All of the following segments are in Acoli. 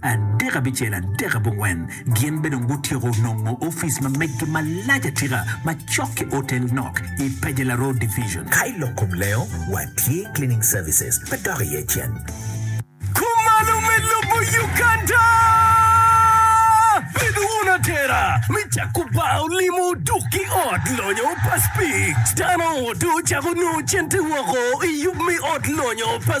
Adek abicel, adek abongwen, gin bene dong gutyeko nongo office ma meggi malac atika ma cok ki otel nok i Pajela Road Division. Ka i lok kom lengo, watye cleaning services ma dok iye cen. Kumalo me lubo Uganda! Bed wun atera me cako bar olimo dok ki ot lonyo pa speed. Dano odo cako nongo cente woko i yub me ot lonyo pa.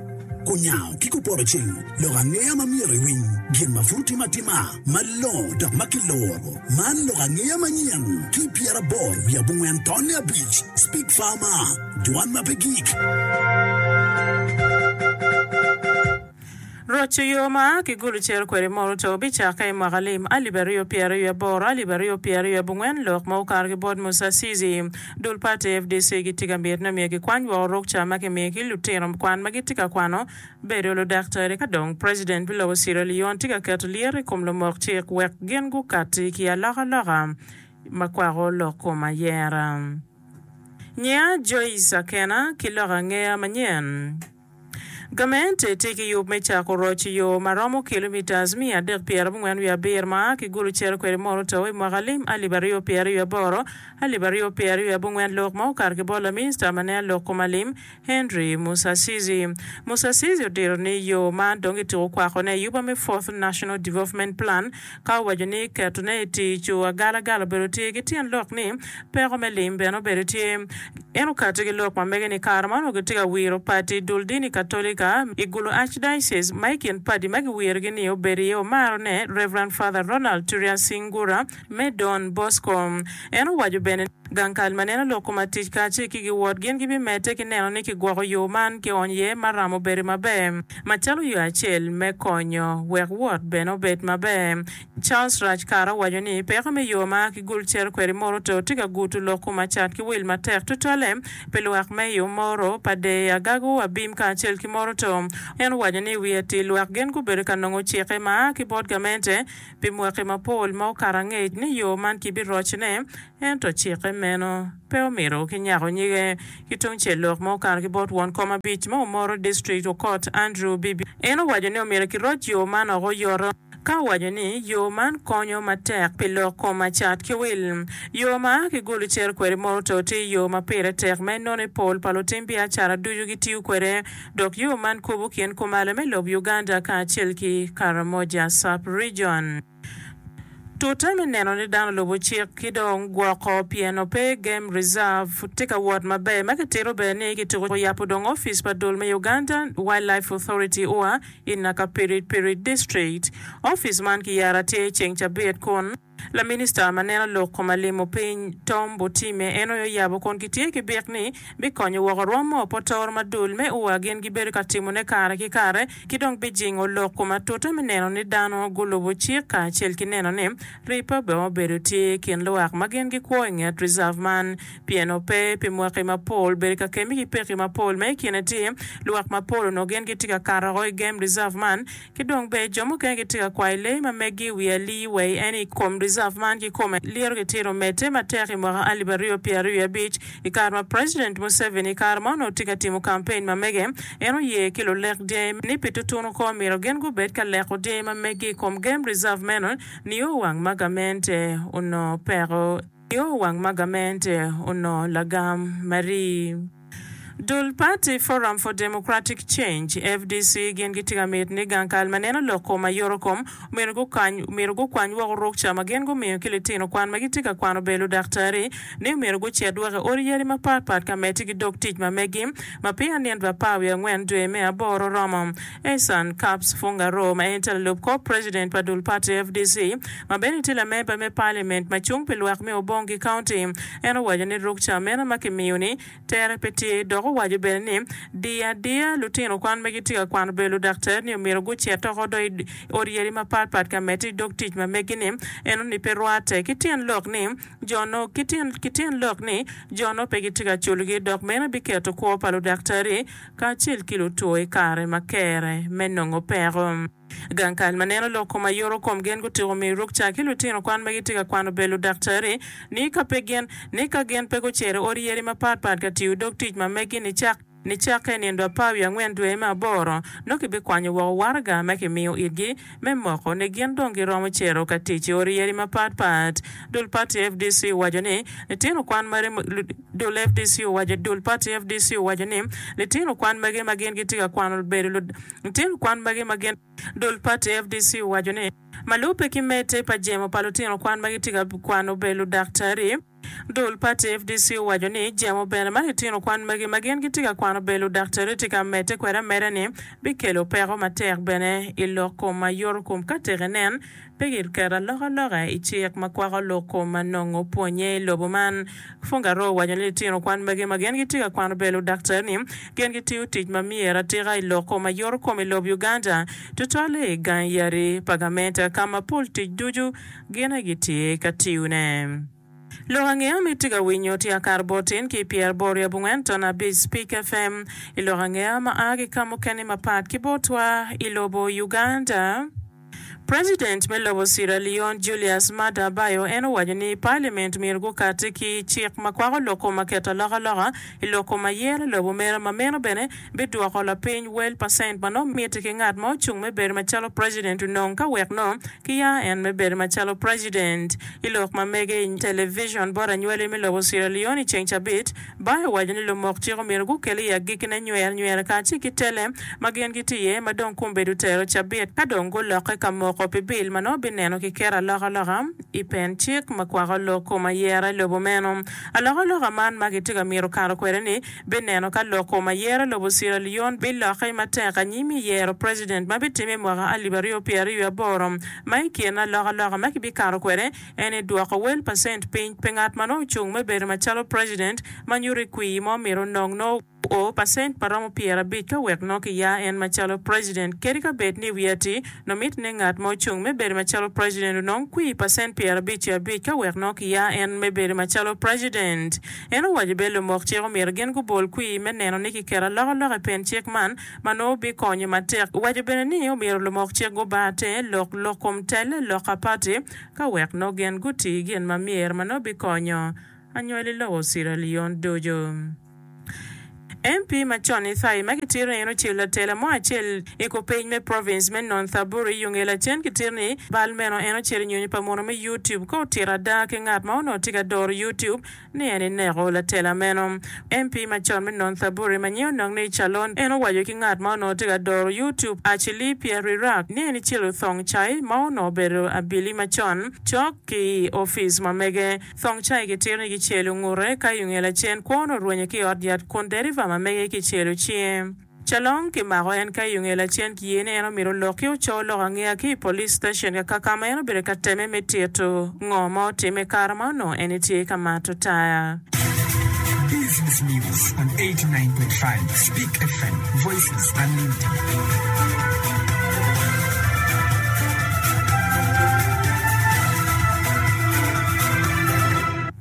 Kunyango ki kupoto cing lok angeya ma myero iwiny gin ma pud otime atima malongo dok ma kiloro. Man lok angeya manyen ki pyeraboro wiye abongwen tonne abic, Speak Farmer, Dwan ma pe gik. Roco yo ma a ki gulu ciro kwede mono to bicakke i mwaka lim alip aryo pyeraryo aboro alip aryo pyeraryo abongwen lok ma okato ki bot Musasizi. Dul pati fdc gitye ka miti ni omyero gikwany woko rukca ma kimiyo ki lutino kwan ma gitye ka kwano bedo ludaktari ka dong president me lobo Sierra Leone tye ka keto lyeto i kom lumok cik wek gin gukatti ki alokaloka ma kwako lok kom ayera. Nyiya Joyce Akena ki lok angeya manyen. Gamente tye ki yub me cako roc i yo ma romo kilomitas miya adek pyera abongwen wiye abir ma a ki Gulu cito kwede mono to i mwaka lim alip aryo pyeraryo aboro, alip aryo pyeraryo abongwen lok ma okato ki bot Laminista ma neno lok kom alim, Henry Musasizi. Musasizi odiro ni yo man dong kituko kwakone i yuba me Fourth National Development Plan, Ka owaco ni ketone i tic cu agalagala obedo tye ki tyen lok ni peko me lim bene obedo tye. En okati ki lok ma mege ni kare ma onongo gitye ka wiro pati dul dini Katolika i Gulu Archdiocese ma i kin padi ma giwirogi ni obedo iye omaro ne Rev. Father Ronald Turian Singura me Don Bosco. En owaco bene. Gang kal ma neno lok kom atic kacel ki giwot gin gibimedde ki neno ni kigwoko yo man kionyo iye ma ramo bedo maber macalo yo acel me konyo wek wot bene obed maber. Charles Raj Kara owaco ni, Peko me yo ma kigul cito kwede Moroto tye ka guto lok kom acat ki wil matek tutwalle pi lwak me i Omoro, Padee, Agago, Abim kacel ki Moroto. En owaco ni, I wi atir lwak gin gubedo ka nongo cikke ma a ki bot gamente, Pi mwaki mapol ma okato angec ni yo man kibirocne, ento cikke meno pe omito kinyako nyige. Ki tungcel lok ma okato ki bot won kom abic ma omoro district okot Andrew Bibi, en owaco ni omyero kiroc yo man oko oyoto, ka owaco ni yo man konyo matek pi lok kom acat ki wil. Yo ma a ki Gulu cito kwede Moroto tye yo ma pire tek ma inono i pol pa lutim biacara ducu gitiyo kwede. dok yo man kubo kin kumalo me lok Uganda kacel ki Karamoja Sub-Region. Tute me neno ni dano olubo cik ki dong gwoko pyeno pe Game Reserve tye ka wot maber ma kitito bene ni kituko yabo dong ofice pa dul me Uganda Wildlife Authority, ua, i Nakapirit Pirit District. Ofice man kiyara tye ceng cabit kun. Laminista ma neno lok koma limo piny Tom Botime en oyo yabo kun gitye ki byek ni bikonyo woko rwom ma opotoro ma dul me ua gin gibedo ka timone kare ki kare ki dong bijingo lok kom atuta me neno ni dano gulubo cik kacel ki neno ni ripe bene obedo tye i kin luwak ma gin gikwo i nget reserve man pien ope pi mwaki mapol bedo ka kemi ki peki mapol ma i kine tye luwak mapol onongo gin gitye ka kato woko i game reserve man Ki dong ber jo mukene gitye ka kwayo lee ma meggi i wi alii wai en i kom reserve man kikome lyeto gitito medde matek i mwaka alip aryo pyera aryo i abic i kare ma president Museveni i kare ma onongo tye ka timo campaign ma mege en oye ki lulek dyangi ni pi tutunu kor myero gin gubed ka leko dyangi ma meggi i kom game reserve meno nio wang ma gamente onongo peko Nio wang ma gamente onongo lagam ma rii. Dul pati Forum for Democratic Change, fdc, gin gitye ka miti ni gang kal ma neno lok kom aye oro kom omyero gukany omyero gukwany woko rukca ma gin gumiyo ki litino kwan ma gitye ka kwano bel ludaktari ni omyero gucit woko i odi yadi mapatpat ka meti ki dog tic ma megi ma piny anyen rapar wiye angwen dwe me aboro romo. Ehsan Kaps Fungaroo ma en tye lalub kor president pa dul pati fdc ma bene tye lamemba me parliament ma cung pi lwak me Obong ki county en owaco ni ruk ca meno ma kimiyo ni tere pe tye dok owaco bene ni diyo adiya lutino kwan ma gitye ka kwano bedo ludaktar ni omyero gucit tok odo i ot yadi mapat pat ka medde idog tic ma megi ni eno ni pe rwate ki tyen lok ni ki tyen lok ni jo-nu pe gitye ka culgi dok meno biketo kwo pa ludaktari kacel ki lutwo i kare ma kere me nongo peko. Gang kal ma neno lok kom aye uru kom gen gutyeko miyo rukca ki lutino kwan ma gitye ka kwano bel ludaktari ni ka pe gin ni ka gin pe gucero odi yeri ma pat pat ka tiyo dog tic ma megi ni cak. Nicakke i nino apar wiye angwen dwe me aboro, nongo kibikwanyo woko waraga ma kimiyo itgi me moko ni gin dong giromo cito ka tic i odi yadi mapat pat. Dul pati fdc owaco ni litino kwan magi Dul fdc owaco Dul pati fdc owaco ni litino kwan magi ma gin gitye ka kwano obedo litino kwan magi ma gin Dul pati fdc owaco ni ma lubbe ki mete pa jemo pa litino kwan ma gitye ka kwano obedo ludaktari. Dul pati FDC owaco ni jemo bene ma litino kwan magi ma gin gitye ka kwano bed ludaktari tye ka medde kwede ameda ni bikelo peko matek bene i lok kom ma yoto kom ka tek enen pe giketo alokaloka i cik ma kwako lok kom ma nongo pwonye i lobo man. Fungaroo owaco ni litino kwan magi ma gin gitye ka kwano bedo ludaktari ni gin gitiyo tic ma myero atika i lok kom ma yoto kom i lob Uganda tutwalle i gang yadi pa gamente ka ma pol tic ducu gin aye gitye ka tiyone. Lok ange ma itye ka winyo tye akato botin ki pyer bor i abongwen ton abic Spik FM i lok ange ma a ki ka mukene mapat ki botwa i lobo Uganda. President me lobo Sierra Leone Julius Maada Bio en owaco ni Parliament myero gukati ki cik ma kwako lok kom ma keto alokaloka i lok kom ayer lobo mere ma meno bene bidwoko lapiny wel pa cent ma nongo mitte ki ngat ma ocung me bedo macalo president onong ka wek nongo kiyaro en me bedo macalo president. I lok ma mege i television bot anywali me lobo Sierra Leone i ceng cabit, Bai owaco ni lumok cik omyero gukel i agikkine nyer nyer kacel ki tele ma gin gitye iye ma dong kumbedo otero cabit ka dong gulokke ka moko pi bil ma nongo bineno ki keto alokaloka i pen cik ma kwako lok kom ayera i lobo meno. Alokaloka man ma kitye ka mito kato kwede ni bineno ka loko ma yero lobo Sierra Leone bilokke matek anyim i yero president ma bitimme i mwaka alip aryo pyera aryo i aboro ma i kine alokaloka ma kibikato kwede en ni dwoko wel pa cent piny pe ngat ma nongo ocung me bedo macalo president ma nyuto i kwii mo myero onong nongo o pa cent ma romo pyera abic ka wek nongo kiya en macalo president kadi ka bed ni i wi ati no miti ni ngat ma ocung me bedo macalo president onong kwii pa cent pyera abic ki abic ka wek nongo kiya en me bedo macalo president. En owaco bene lumok cik omyero gin gubol kwir me neno ni kiketo alokaloka i pen cik man ma nongo bikonyo matek. Owaco bene ni omyero lumok cik gubar te lok lok kom tel lok a pati ka wek nongo gin guti gin ma myero ma nongo bikonyo anywali lobo Sierra Leone ducu. MP ma con Ithai ma kitito ni en ocel latela mo acel i kupeny me province me Nonthaburi i Unge lacen kitito ni bal meno en ocel i nyonyo pa muno me YouTube ka otito ada ki ngat ma onongo tye ka doro YouTube ni en ineko latela meno. MP ma con me Nonthaburi ma nyinge onongo ni Calon en owaco ki ngat ma onongo tye ka doro YouTube Achilli Pierrirak ni en icelo thong cai ma onongo obedo abili macon cok ki i office ma mege Thong cai ki tino ki celo ngute ka i onge lacen kwo onongo orwenye ki i ot yat kun deriva ma mege ki celo cinge. Calong ki mako en ka i onge lacen ki ye ni en omito lok ki oco lok angeya ki i police station kaka kama en obedo ka teme me tito ngo ma otime kare ma onongo en etye ka mato taya. Business News on 89.5 Speak FM, Voices.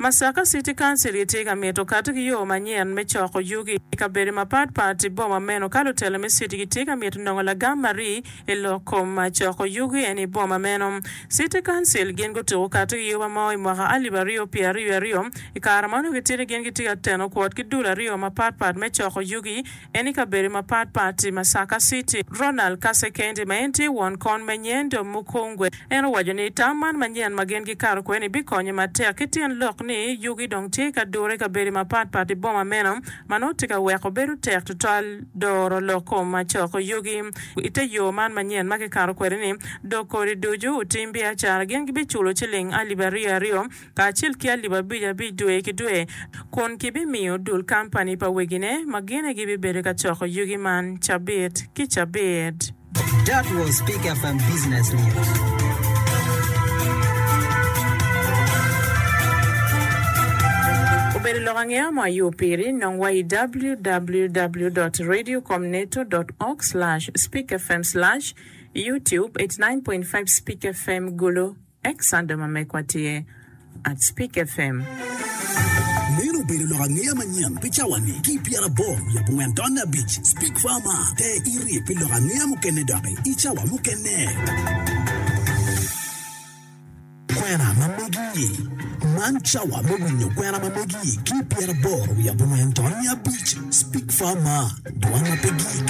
Masaka City Council gitye ka mito kati ki yo manyen me coko yugi i kabedo mapat pat i boma meno ka lutela me city gitye ka mito nongo lagam ma rii i lok kom coko yugi eni i boma meno. City Council gin gutuko kati ki yoba mo i mwaka alip aryo pye aryo aryo, i kare ma onongo gitye ni gin gitye ka teno kwot ki dul aryo mapat pat me coko yugi en i kabedo mapatpat i Masaka City. Ronald Kasekende ma en tye won kon me Nyendo Mukungwe en owaco ni tam man manyen ma gin gikato kwede-ni bikonye matek ki tyen lok ni yugi dong tye ka dure i kabedo mapatpat i boma meno ma nongo tye ka weko bedo tek tutwal doro lok kom macoko yugi i te yo man manyen ma kikato kwede-ni dok kodi ducu otim biacara gin gibiculo ciling alip aryo aryo kacel ki alip abic abic dwe ki dwe, kun kibimiyo dul kampani pa wegine ma gine gibibedo ka coko yugi man cabit ki cabit. That was Pick FM Business News. Obedo lok angeya mo ayo piri, nong wa i www dot radio com neto dot org slash speak fm slash youtube eighty nine point five speak fm gulu. Ex Sando ma megwa tye at Spik FM. Meno obedo lok angeya manyen pi cawa-ni ki i pyera aboro wiye abongwen tonne abic. Spik fa ma, te irye pi lok angeya mukene doki i cawa mukene. Kwena ma megi. Man cawa me winyo kwena ma megi ki i pyera aboro wiye abongwen tonne abic. Spik fa ma, dwan ma pe gik.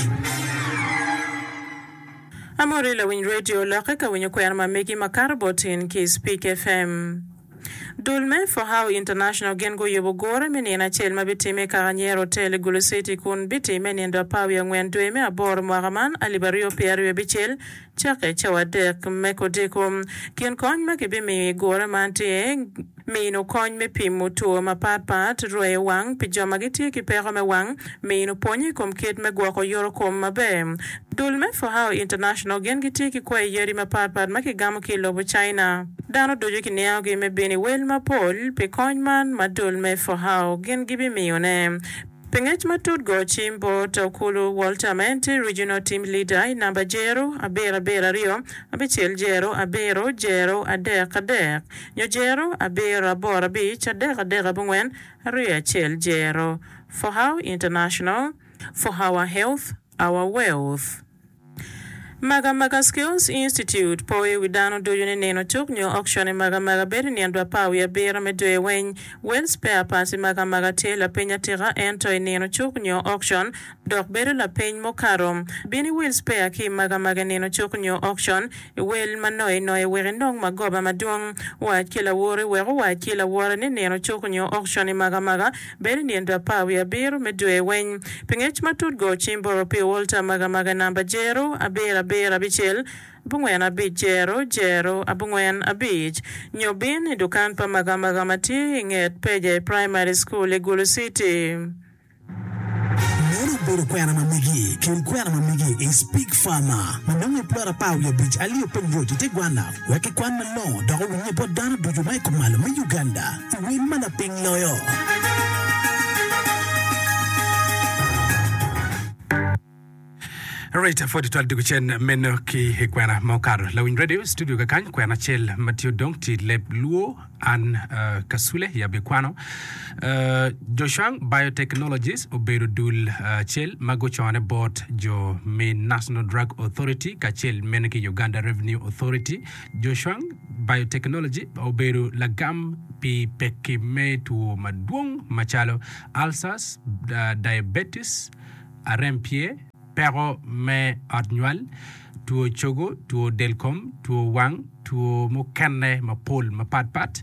Amori lawiny radio lokke ka winyo kwena ma megi ma kato bot in ki i Speak FM. Dul me For How International gin guyubo gure me nino acel ma bitimme i kaka Nyero Hotel i Gulu City kun bitimme i nindo apar wiye angwen dwe me aboro mwaka man alip aryo pyera aryo abicel cakke cawa adek me kodiko. Kin kony ma kibimiyo i gure man tye. mino kony me pimo two mapatpat, rweyo wang pi jo ma gitye ki peko me wang, mino pwony i kom kit me gwoko yorokom maber. Dul me Fohao International gin gitye ki kwayi yadi mapatpat ma kigamo ki i lobo China. Dano ducu kiningogi me bino i wel mapol pi kony man ma dul me Fohao gin gibimiyone. Pi ngec matut go cim bot Okulu Walter ma en tye Regional Team Leader i namba jero abiro abiro aryo abicel jero abiro jero adek adek. Nyo Jero, Abiro, Aboro, Abic, Adek, Adek, Abongwen, Aryo, Acel, Jero, For how international For hour health Our wealth Maga Maga Skills Institute poyo i wi dano ducu ni nino cuk nyo auction i Maga Maga bedo i nino dwe apar wiye abiro me dwe weny. Well spare parts i Maga Maga tye lapiny atika ento i nino cuk nyo auction dok bedo lapeny mukato. Bin iwil spea ki i maga maga nino cuk nyo okcon, iwel ma noye noye wek inong magoba madwong. Wac ki lawori wek owac ki lawore ni nino cuk nyo okcon i maga maga bedo i nino apar wiye abiro me dwe weny. Pi ngec matut go cim boro pi olta maga maga namba jero abiro abiro abicel abongwen abic jero jero abongwen abic nyo bin i dukan pa maga maga ma tye i nget peja i Primary School i Gulu City. Meno obedo kwena ma megi keri kwena ma megi i Speke Farmer ma nongo i plot apar wiye abic alio piny roc i te gwanna wek ki kwan malongo dok owinye bot dano ducu ma i kom malo me Uganda i wel ma lapiny loyo. Alright, afo tutwal duk cen meno ki i kwena ma okato. Lawiny Radio studio ka kany kwena acel ma tye odong ti leb luo an uh, kasule yabi kwano. Uh, Joshang Biotechnologies obedo dul uh, cel ma gucone bot jo me National Drug Authority kacel meno ki Uganda Revenue Authority. Joshang Biotechnology obedo lagam pi pekki me two madwong macalo ulcers, uh, diabetes, arem pye, peko me ot nywal, two cogo, two del kom, two wang, two mukene mapol mapat pat.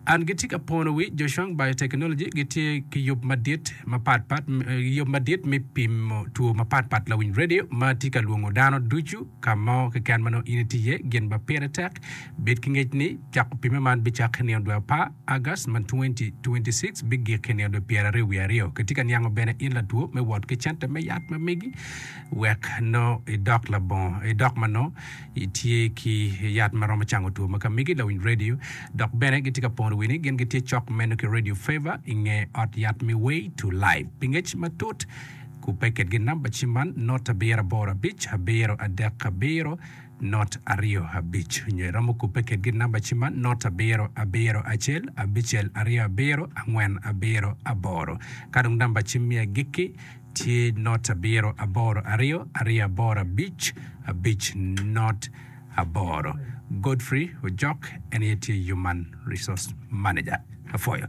An gitye ka pono wi Zhoushuang Biotechnology gitye ki yub madit mapat pat, yub madit me pimo two mapat pat lawiny radio ma tye ka lwongo dano ducu ka mo keken ma nongo in itye iye, gin ma pire tek bed ki ngec ni cako pimme man bicak ki nino dwe apar. August ma 2026 bigik i nino pyeraryo wiye aryo. Kitye ka niango bene in latwo me wot ki cente me yat ma megi wek nongo idok labongo, idok ma nongo itye ki yat ma romo cango two ma ka megi lawiny radio. Dok bene gitye ka pono wi ni gin gitye cok meno ki Radio Favor i nge ot yat me Way to Life. Pi ngec matut kubbe kitgi namba cim man, Not abiro aboro abic, abiro adek abiro. not aryo abic nyo iromo kubbe kedgi namba ci man not abiro abiro acel abicel aryo abiro angwen abiro aboro ka dong namba ci me agikki tye not abiro aboro aryo aryo aboro abic abic not aboro Godfrey Ojok en aye tye Human Resource Manager apwoyo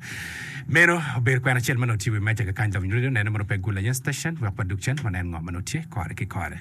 meno obedo kwena acel ma nongo tye i wi meja kakany Lobnyeryo nene mono pe gul aye station wek wadug cen wanen ngo ma nongo tye kore ki kore.